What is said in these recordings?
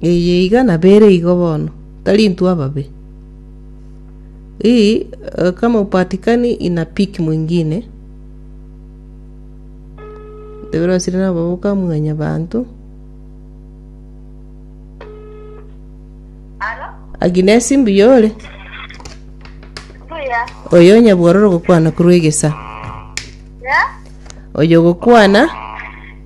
Eye iga nabere igo bono, tari intwe ababe. Hii eh, kama upatikani ina piki mwingine, tebera osire nabo bokamwenya bantu. Alo? Aginesi mbuyore, Buya. oyo nyabwororo gokwana korwa egesa, Ya? oyo gokwana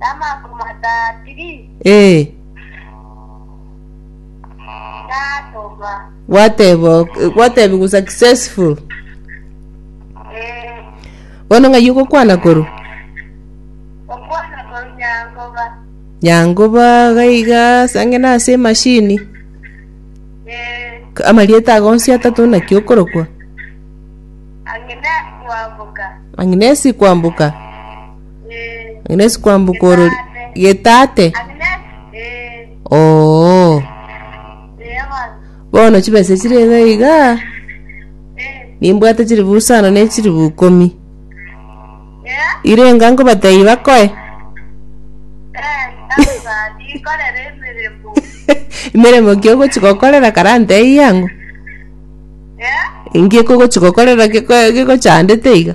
Namaaku matatiri Ee, natoma. gwateba ok- gwatebi gusa successful. Ee, Bono ng'ai ogokwana koru? okwana koru nyangoba. Nyangoba gaiga ase ang'e na ase emashini. Ee, K- Amarieta ago onsi atato naki okorokwa? ang'ina kwambuka. Agnes kwamboka. Agnes kwambuka orori getate oo bono chibesa chire iga iga nimbwate chiribu isano ne chiribu ikomi irenga nkobatebia bakoe emeremo ki ogochi gokorera kare antebie ang'o inki ekogochi gokorera geko- gegochandete iga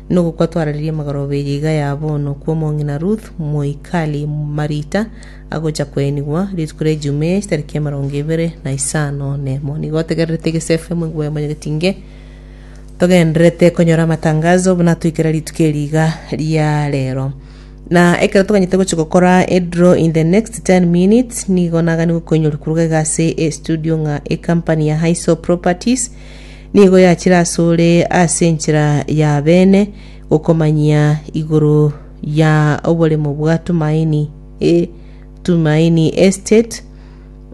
Nogokwa twararerie magarobeirie iga ya bono kw'omong'ina Ruth moikari Marita, agocha koenigwa, rituko ri'Ejumaa ase tariki emerongo ebere na isano nemo. Nigo otegererete egesefu amo igwa ya Mwanyagetinge, togendererete konyora amatangazo buna atoikera rituko eri iga ria rero. Na ekero toganyete gochia gokora edraw in the next 10 minutes, nigo naganigwe koinyoria koruga iga ase estudio ng'a ecompany ya Highsore Properties, Nigo yachire asore ase enchera y'abeene gokomanyia igoro ya oboremo bwa Tumaini, eh, Tumaini Estate,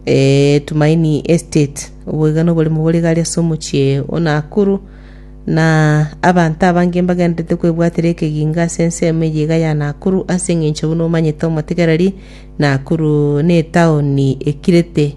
eh, Tumaini Estate. Obwo iga noboremo bore igare ase omochie o Nakuru, na abanto abange mbagendererete kwebwatera ekegingo ase ensemo eye iga ya Nakuru ase eng'encho buna omanyete omotegereri, Nakuru netaoni ekirete.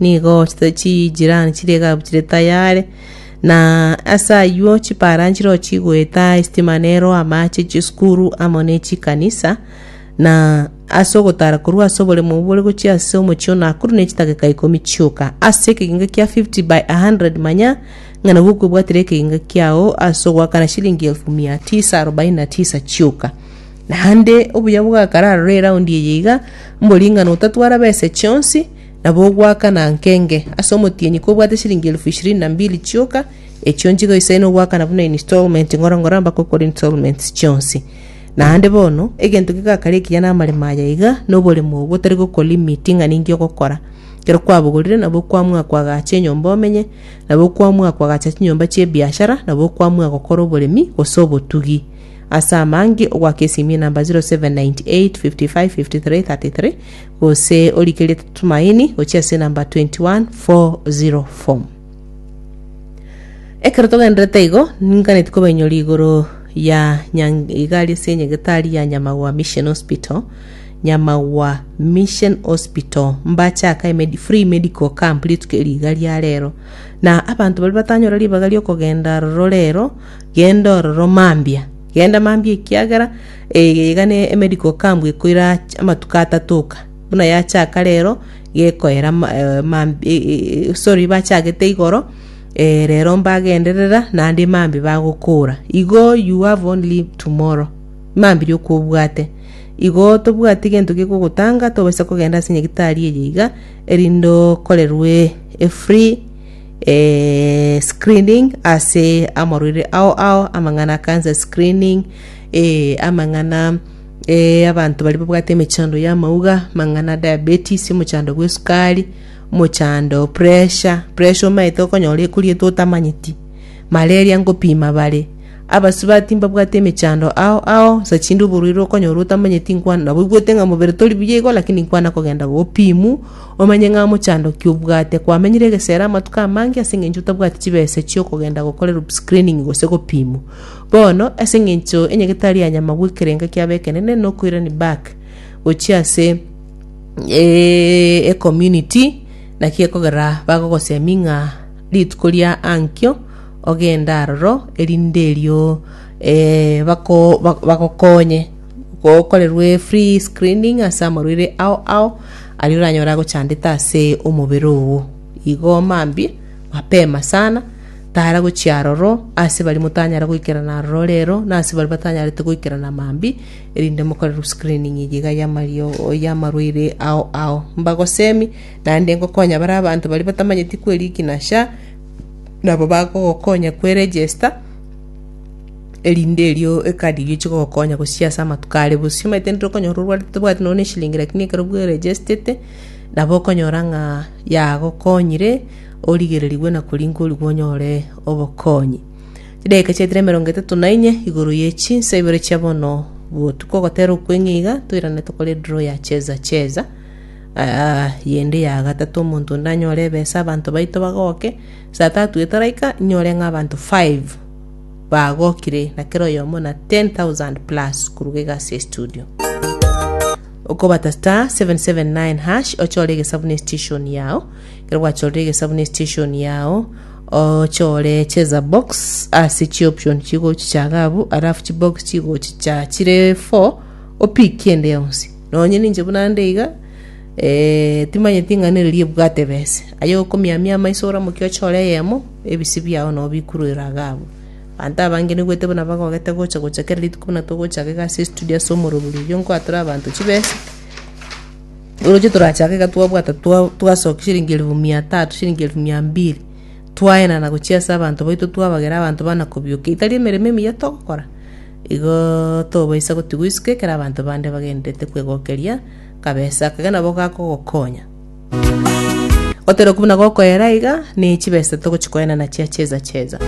nigo chijirani chiria egabuchire tayare, na ase ayio chipara nchireo chigoeta, esitima neroa, amache, chisukuru amo ne chikanisa, na ase ogotara korwa ase oboremo obwo bore gochia ase omochie o Nakuru ne chidakika ikomi chioka ase ekegenga kia 50 by 100 manya ng'a nabwo okwebwatera ekegenga kiao ase ogoakana shilingi elfu mia tisa arobaini na tisa chioka. Naende obuya bw'agakararora eraundi eye iga, mbori ng'a notatwara besa chionsi, Nabo ogoaka nankenge, ase omotienyi kobwate chiringi elifu ishirini na mbili chioka, echio nchiga oisaine ogoakana buna ininstalment ng'oro ng'oro mpaka okore installments chionsi. Naende bono, egento kegakare ekiya namaremo aya iga, noboremo obwo otari gokolimit ng'a ninki ogokora. Ekero kwabogorire, nabo okwamua koagacha enyomba omenye, nabo okwamua koagacha chinyomba chi'ebiashara, nabo okwamua gokora oboremi, gose obotugi. Ase amange, ogoaka esimi enamba 0798 55 53 33, Gose origerie Tumaini gochia ase enamba 21404 form. Ekero togendererete igo, ninganetie kobainyoria igoro ya nyang igari ase enyegetari ya Nyamagwa Mission Hospital, Nyamagwa Mission Hospital, mbachaka emedi free medical camp rituko erio iga ria rero. Na abanto baria batanyora ribaga riokogenda aroro rero, genda ororo mambia. Genda mambia ekiagera Eye iga ne emedical camp ekoira amatuko atatoka buna yachaka rero gekoera sorry bachagete igoro eh, rero mbagenderera naende mambi bagokora igo you have only tomorrow mambi rioka obwate igo tobwati gento gekogotanga tobasa kogenda ase nyagitari eye iga erinde okorerwe a free eh, screening ase amarwaire ao ao amang'ana cancer screening Ee, amang'ana eh, abanto baria babwate emechando y'amauga, mang'ana diabetes, omochando bw'esukari, omochando pressure, pressure omaete okonyora ekoriete otamanyeti, malaria nkopima bare. Abasubati mbabwate emechando ao ao, nsa chinde oborwaire okonyora otamanyeti inkwana nabo oigwete ng'a mobere tori buya igo lakini inkwana kogenda gopimu, omanye ng'a mochando ki obwate. Kwamenyire egesera amatuko amange ase eng'encho otabwati chibesa chi'okogenda gokora screening gose gopimwa. Bono, ase engencho enyagetari ya nyama gwekerenka kia bekenene nokoirani back gochia ase e community naki ekogera bagogosemi ng'a rituko ria ankio ogende aroro erinde erio e bako bagokonye gokorerwe free screening ase amarwaire ao ao aria oranyore agochandete ase omobere oo. Igo mambia mapema sana. tara gochia aroro, ase baria motanyare goikerana aroro rero, na ase baria batanyarete goikerana mambi, erinde mokore root screening eye iga y'amario y'amarwaire ao ao. Mbagosemi, naende ngokonya baria abanto baria batamanyeti kweriki na SHA, nabo bagogokonya kwe register, erinde erio ekadi eria chigogokonya gochia ase amatuko are bosio. Omanyete intwe okonyora orwarete tobwati nonye na eshilingi lakini ekero bweregestete, nabo okonyora ng'a yagokonyire, origererigwe na korinkorigwa onyore obokonyi. Chidakika chiaetire emerongo etato na inye igoro ye chinsa ibere chia bono botuko ogotera okweng'e iga toirane tokore draw ya cheza cheza ah, yende ya gatato omonto onde anyore ebesa abanto baito bagoke saa tatu etaraika inyore ng'a abanto five bagokire na kera oyomo na 10000 plus koruga egasi ya studio okobata star 779 hash ochore egesabu ne station yao Ekero gwachorire egesabu ne station yao, ochore cheza box ase chi option chigochi chaga abwo, alafu chi box chigochi cha chire four opikie ende yonsi. Nonye ninche buna nde iga, eh, timanyeti ng'a nere riebwate bese. Aye okomiamia amaiso oramoke ochore eyemo, ebisi biao nao bikuruere iga abwo. Abanto abange nigwete buna bagogete gocha gocha kera rituko buna togochaka iga ase estudio ase omorobori oyio nkoa tore abanto chibesa, Oroche torachaake iga twabwata twa- twasokia chiringi elifu mia tatu chiringi elifu mia mbili twaenana gochia ase abanto baito twabagera abanto bana kobioka etari emeremo emiya togokora igo tobaisa gotigwa isiko ekero abanto bande bagendererete kwegokeria kabesa aka iga nabo gakogokonya oteba buna gokoera iga ne chibesa togochi koenana chia cheza cheza.